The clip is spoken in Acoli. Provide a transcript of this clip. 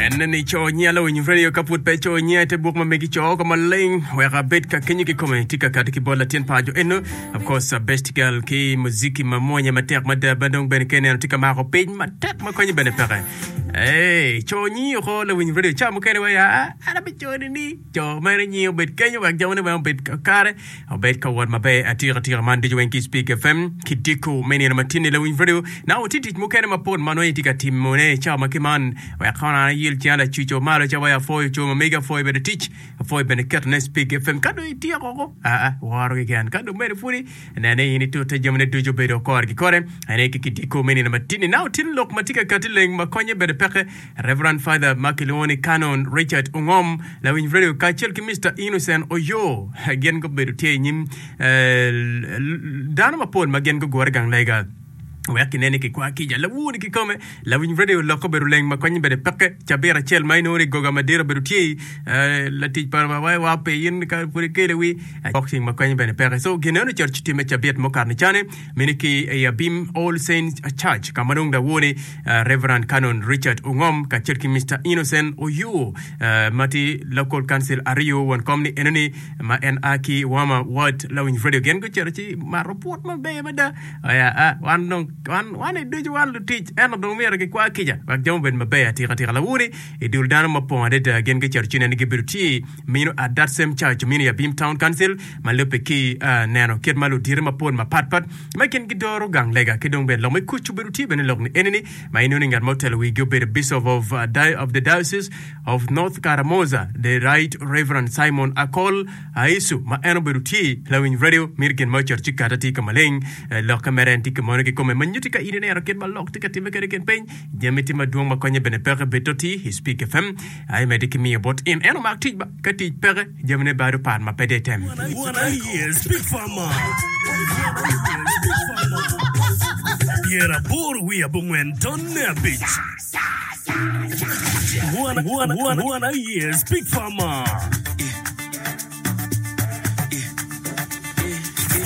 Enne ni co nyiya lawiny radio ka pud pe co nyiya ite buk ma megi co oko maleng wek abed ka kenyo ki kome tika kati ki bot latin paco eno of course a best girl ki muziki ma mwonye matek mada ma dong bene ke neno tika mako piny matek ma konye bene peke. Hey, co nyi oko lawiny radio ca mukene wa ya an abico ni ni Jo mere nyi obed kenyo wek jamone weng obed kakare, obed ka wot maber atika tika. Man ducu weng ki Speak FM ki Diko me Nino Matinni Lawiny Radio. Naka watye tic mukene mapol ma nongo itye ka timone i cawa ma ki man. Wek kono an ayil cinga lacuco malo cawa ya pwoyo co ma megi apwoyo bene tic, apwoyo bene ketone Speak FM. Ka dong ityeko ko, aa, woro keken. Ka dong mere pwodi, nen ni in itute jamine ducu obedo kore ki kore. Ane ki ki Diko me Nino Matinni. Naka watye ni lok ma tye ka kati leng ma konye bene peke. Reverend Father ma kilwongo ni Canon Richard Ongom, lawiny redio, kacel ki Mister Innocent Oyoo, gin gubedo tye i nyim dano mapol ma gin gugure gang lega wek ginen ni kikwa kica lawur ni kikome. Lawiny redio lok obedo leng ma konye bene peke cabit acel ma inongo ni goga madit obedo tye i latic pa wa wa pe in ka pud ikele wi boxing ma konye bene peke. So gin eno church time cabit mukato ni cani. mene ki i Abim All Saints Church ka ma dong lawone Rev. Canon Richard Ongom kacel ki Mister Innocent Oyoo ma tye Local Council aryo won kom ni enoni ma en a ki Wama Ward Lawiny Radio gin gucito ci mato pwot maber mada oya a wan dong wan wan i ducu wan lutic ento dong myero gikwa kica wek jami obed maber atika tika lawone i dul dano mapong adada gin gucito ci neno ni gibedo tye Mino Adad Same Church omino i Abim Town Council ma lubbe ki neno kit ma ludito mapol mapat pat ma i kingi doro gang lega ki dong bene lok me kuc obedo tye bene lok ni enini ma inongo ni ngat ma otelo wigi obedo Bishop of, of the Diocese of North Karamoja the Right Reverend Simon Akol Aisu ma en obedo tye lawiny radio mito gin ma ocito ci kata tye ka maleng lokke mere en tye ki mono ki kome ma nyuti ka in ineno kit ma lok tye ka timme kede kin piny jami tye madwong ma konye bene peke bito ti i Speak FM aye medde ki miyo bot in. En omak tic ba, ka tic peke, jamine bado par ma pe de item.